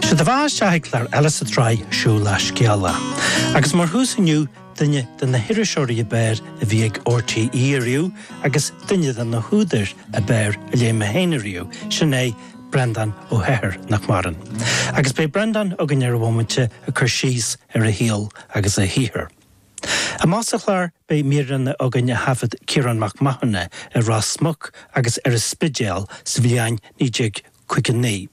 Sé do bheatha isteach ag clár eile sa tsraith Siúlach Scéalach. Agus mar thús inniu, duine de na hiriseoirí ab fhearr a bhí ag RTÉ ariamh agus duine de na húdair ab fhearr a léigh mé féin ariamh, sin é Breandán Ó hEithir, nach maireann. Agus beidh Breandán againn ar an bhomaite ag cur síos ar a shaol agus a shaothar. Amach sa Chlár beidh míreanna againn a thaifead Ciarán Mac Mathúna i Ros Muc agus ar an Spidéal sa bhliain 1959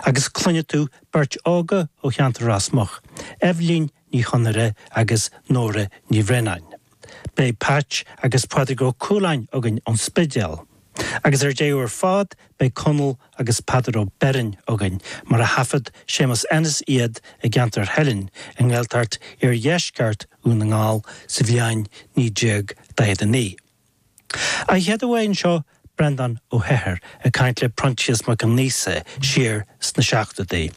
agus cluinfidh tú beirt óga ó cheantar Ros Muc, Eibhlín Ní Chonaire agus Nóra Ní Bhraonáin. Beidh Peait agus Pádraig Ó Cualáin againn ón Spidéal. Agus ar deireadh ar fad beidh Conall agus Peadar Ó Beirn againn mar a thaifead Séamus Ennis iad i gceantar Theilinn i nGaeltacht Iardheisceart Dhún na nGall sa bhliain 1949. A chéaduair anseo Breandán Ó hEithir ag caint le Proinsias Mac Aonghusa siar sna seachtóidí,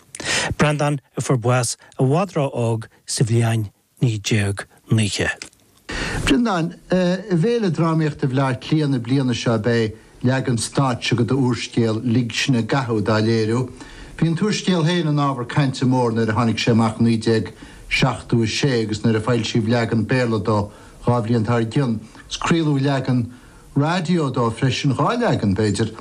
Breandán a fuair bás i bhfad ró-óg sa bhliain 1990. A Bhreandáin, I bhFéile Drámaíochta Bhleá Cliath na bliana seo beidh leagan stáitse go do úrscéal Lig Sinn i gCathú á léiriú. Bhí an t-úrscéal féin ina ábhar cainte mór nuair a tháinig sé amach 1976 agus nuair a foilsíodh leagan Béarla dó dhá bhliain dár gcionn, craoladh leagan raidió dó freisin, dhá leagan, b'fhéidir.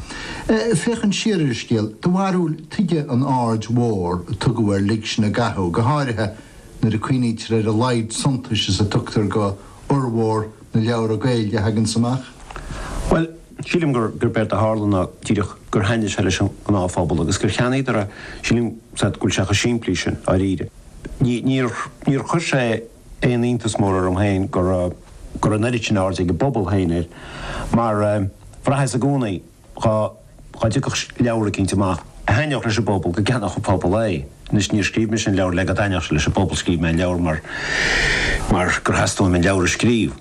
Féachaint siar ar an scéal, do bharúil, tuige an aird mhór a tugadh ar Lig Sinn i gCathú, go háirithe nuair a cuimhnítear ar a laghad suntais is a thugtar go fhormhór na leabhra Gaeilge a thaganns amach? Bhuel, sílim gur gurb éard a tharla ná díreach gur thaitnigh sé leis an ngnáthphobal agus gur cheannaíodar é. Sílim, is ait, go bhfuil sé chomh simplí sin, dháiríre. Níor chuir sé. aon iontas mór orm féin go raibh an oiread sin airde ag an bpobal féin air mar bhraitheas i gcónaí dhá dtiocfadh leabhar eicínt amach a thaitneodh leis an bpobal go gceannódh an pobal é. Anois níor scríobh mise an leabhar le go dtaitneodh sé leis an bpobal, scríobh mé an leabhar mar gur theastaigh uaim an leabhar a scríobh.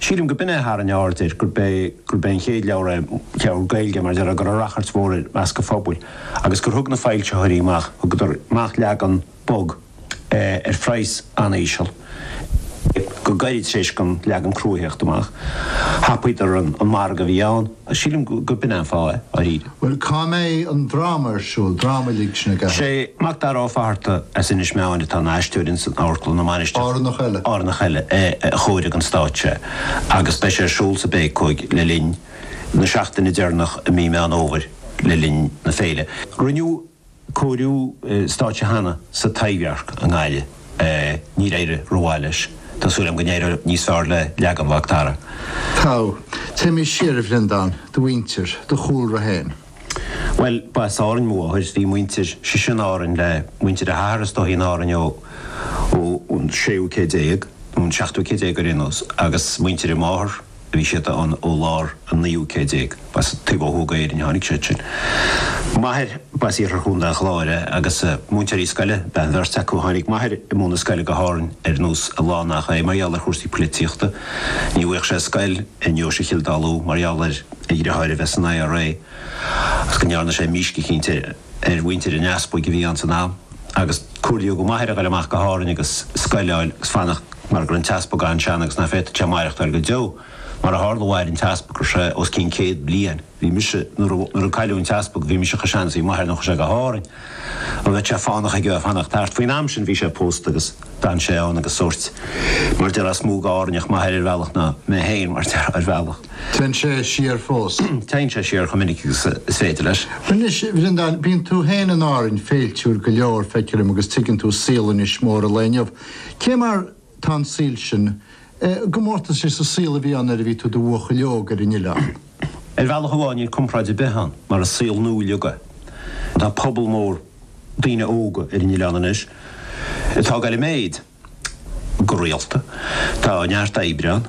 Sílim gurb in é a tharraing aird air, gurb é gurb é an chéad leabhar é, leabhar Gaeilge mar deir, a raibh rachairt mhór air i measc an phobail agus gur thug na foilsitheoirí amach, thugadar amach leagan, bog, ar phraghas an-íseal, go gairid tar éis don leagan crua a theacht amach. Thapaíodar an margadh a bhí ann, agus sílim gurb in é an fáth é, dáiríre. Bhuel, cá mbeidh an dráma ar siúl, dráma Lig Sinn i gCathú? Sé Mac Dara Ó Fatharta as Inis Meáin atá ina aisteoir ins an amharclann na Mainistreach, Árannach eile. Árannach eile a chóirigh don stáitse é, agus beidh sé ar siúl sa bPéacóig le linn na seachtaine deireanach i mí Meán Fhómhair le linn na féile. Rinneadh cóiriú stáitse cheana sa Taibhdhearc i nGaillimh. Níor éirigh rómhaith leis. Tá súil agam go n-éireoidh níos fearr le leagan Mhacdara. Tá. Téimis siar, a Bhreandáin, do mhuintir, do chúlra féin. Bhuel, ba as Árainn mo mháthair. Bhí a muintir sise in Árainn le muintir a hathar is dóigh in Árainn ó an séú céad déag, nó an seachtú céad déag ar aon nós, agus muintir a máthar, Bhí siad ann ó lár an naoú céad déag. B'as taobh ó thuaidh d'Éirinn a tháinig siad sin. M'athair, b'as iarthar Chontae an Chláir é agus múinteoirí scoile ab ea an bheirt acu. Tháinig m'athair ag múineadh scoile go hÁrainn ar nós a lán nach é, mar gheall ar chúrsaí poilitíochta. Ní bhfuigheadh sé scoil i nDeoise Chill Dalua mar gheall ar a dhriotháir a bheith san IRA agus go ndearna sé mísc eicínt ar mhuintir an Easpaig a bhí ann san am agus comhairlíodh do m'athair a ghoil amach go hÁrainn agus scoil a fháil agus fanacht mar go raibh an t-easpag an-sean agus nach bhféadfad sé maireachtáil go deo. Mar a tharla mhair an t-easpag go raibh sé os cionn céad bliain. Bhí mise, nuair a, nuair a cailleadh an t-easpag bhí mise chomh sean is bhí m'athair nuair a chuaigh sé go hÁrainn agus bheadh sé fánach aige fanacht thart. Faoin am sin bhí sé pósta agus. D'fhan sé ann agus sórt, mar a déarfá, is mó d'Árainneach m'athair ar bhealach, ná mé fhéin, mar a déarfá, ar bhealach. Téann sé siar fós. Téann sé siar chomh minic agus is féidir leis. Anois, Bhreandáin, bíonn tú fhéin in Árainn féiltiúil go leor, feictear dom, agus tuigeann tú saol Inis Mór an lae inniu. Cé mar tá an saol sin, i gcomórtas leis an saol a bhí ann nuair a bhí tú i do bhuachaill óg ar an Oileán? Ar bhealach amháin níl comparáid ar bith ann, mar is saol nua uilig é. Tá pobal mór. daoine óga ar an oileán anois atá ag goil i méid go rialta. Tá neart oibre ann.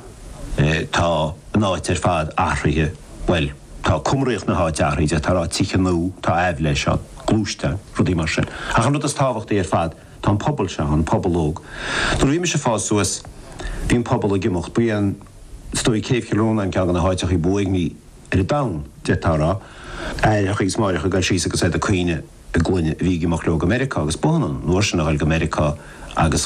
Tá an áit ar fad athraithe, bhuel, tá cumraíocht na háite athraithe, d'fhéadfá a rá, tithe nua, tá aibhléis ann, gluaisteáin, rudaí mar sin. Ach an rud is tábhachtaí ar fad, tá an pobal seo ann, an pobal óg. Nuair a bhí mise ag fás suas, bhí an pobal ag imeacht. Ba é an, is dóigh, Céibh Chill Rónáin ceann de na háiteachaí ba uaigní. ar an domhan, d'fhéadfá a rá. Aithreacha agus máithreacha ag dul síos agus iad ag caoineadh a gclainne a bhí ag imeacht leo go Meiriceá agus b'ionann an uair sin a dhul go Meiriceá agus